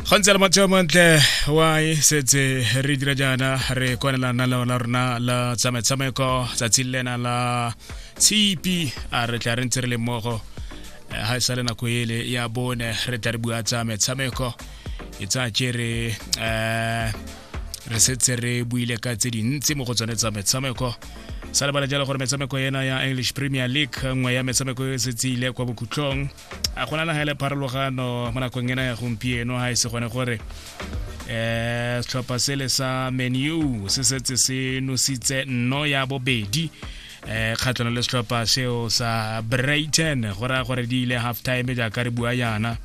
ga ntse le matsheo mantle wa e setse re dira jaana re kwanela naleo la rona la tsamaetsamaeko tsatsi le lena la tshipi a re tla re ntse re le mmogo eh, ga e sa le nako ele ya bone re tla re bua tsa metshameko e tsa kere um re setse re buile ka tse dintsi mo go tsone tsa metshameko sa lebala jalo gore metshameko ena ya english premier league nngwe ya metshameko e setse ile kwa bokhutlong a go nana ga le pharologano mo nakong ena ya gompieno ga e se gone gore um setlhopha sele sa menu se setse se nositse nno ya bobedi eh kgatlhano le setlhopha seo sa brighton go raya gore di ile half time jaaka re bua yana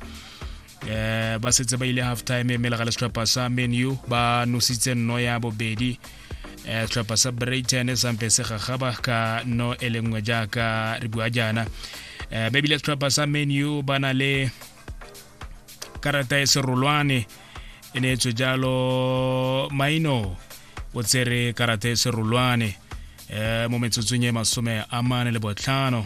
eh ba setse ba ile half time mme lega le setlhopha sa menu ba nositse nno ya bobedi eh setlhopha sa brighton sampe se gagaba ka no e le nngwe jaaka re bua jaana eh ba ebile setlhopha sa menu ba na le karata e serolwane e ne etswe jalo maino o tsere karata e serolwane eh mo metsotsong e masome a mane le botlhano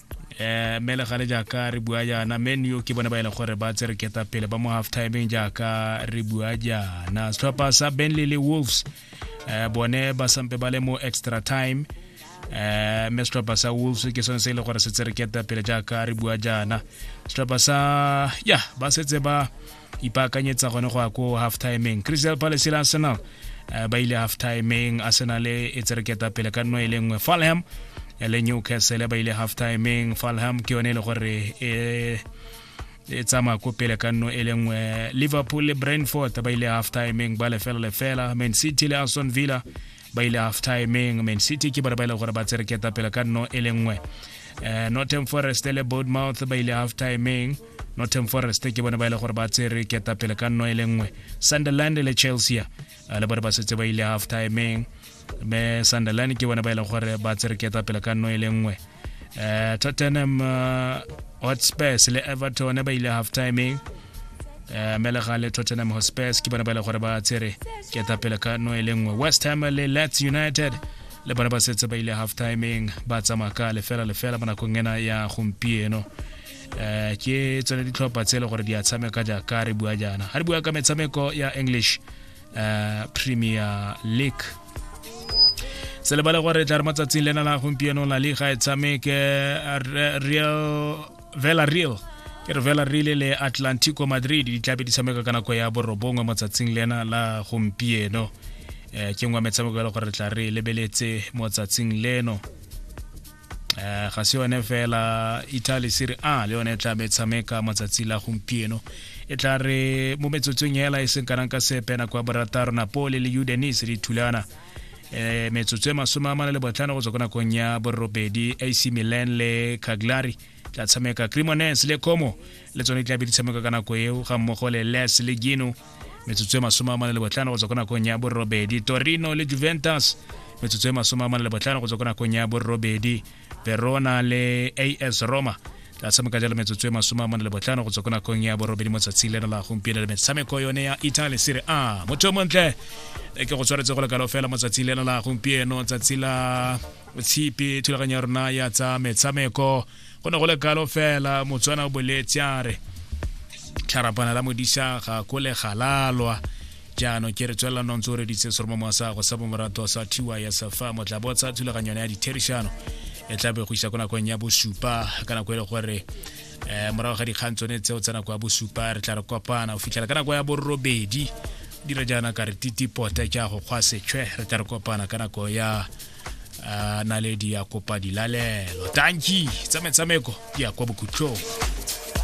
eh mme le gale jaaka re bua jaana men yo ke bone ba e leng gore ba tsere keta pele ba mo half timeng jaaka re bua jaana setlhopha sa benley le wolves eh bone ba sampe ba le mo extra time eh mme setlhopha sa wolves ke sone se e leng gore se tsere keta pele jaaka re bua jaana setlhopha sa ya ba setse ba ipaakanyetsa gone go ya ko half timeng crystal palace le arsenal eh, ba ile half timeng arsenal e tsereketa pele ka nno e le nngwe falham eh, le newcastle ba ile half timeng falham ke yone e le gore e e tsamaya ko pele ka nno e le nngwe liverpool le brentford ba ile half timeng ba lefela lefela man city le aston villa ba ile half timeng man city ke bone ba e leng gore ba tsere ketapele ka nno e le nngwe um northern forest le bournemouth ba ile half timeng northern forest ke bone ba e leng gore ba tsere ketapele ka nno e le nngwe sunderland le chelsea eh, le bone ba setse ba ile half timeng me sunderland ke bone ba e leng gore ba tsere ketapele ka nno e le nngwe uh, tottenham uh, hotspurs le everton ba ile half timeng uh, melega le tottenham hotspurs ke bona ba ile gore ba tsere ke etapele ka no e le nngwe west ham le lets united le bona ba setse ba ile half timeng ba tsamaya ka lefela lefela mo nakong ena ya gompieno um ke tsone ditlhopha tse e le gore di a tshameka jaaka re bua jaana ga re bua ka metshameko ya english uh, premier league se lebale gore tla re matsatsing lena la gompieno la liga e tshameke real vela real ke re vela rile le atlantico madrid di tlabe di tshameka ka nako ya borobongwe motsatsing lena la gompieno um ke ngwe metshameko e le gore tla re lebeletse motsatsing leno eh, ga se yone fela italy sere a le yone e tla be tshameka matsatsi la gompieno e tla re mo metsotsong ela e seng kanang ka sepe nako ya borataro napole le udenis di thulana eh metsotso e masome a mane le botlhano go tswa ko nakong ya borobedi ac milan le caglari tla tshameka cremones le como le tsone tla be di tshameka ka nako eo ga mmogo le les le gino metsotso e masome a mane le botlhano go tswa ko nakong ya borobedi torino le juventus metsotso e masome a mane le botlhano go tswa ko nakong ya borobedi verona le as roma tla tshameka jalo metsotso e masome a mane le botlhano go tswa ko nakong ya borobedi mo tsatsing leno la gompieno le metshameko yone ya italy sere a motho o montle ke go tshwaretse go lekalo fela mo tsatsing leno la gompieno tsatsi la tshipi thulaganyo ya rona ya tsa metshameko go ne go le kalo fela motswana o boletse a re tlharapana la modisa ga ko le galalwa jaanong ke re tswelela nontse o reditse seromo mo sa go sa bomorato sa thiwa ya safa motla botsa thulaganyo ya ditherišano e tla be go isa ko nakong ya bosupa ka nako e le gore um morago ga dikgang tsone tseo tsa nako ya bosupa re tla re kopana go fitlhela ka nako ya borobedi dira jaana ka re titipota ke a go kgwa sechwe re tla re kopana ka nako ya a naledi ya kopa dilalelo tanki tsa metshameko di ya kwa bokhutlhong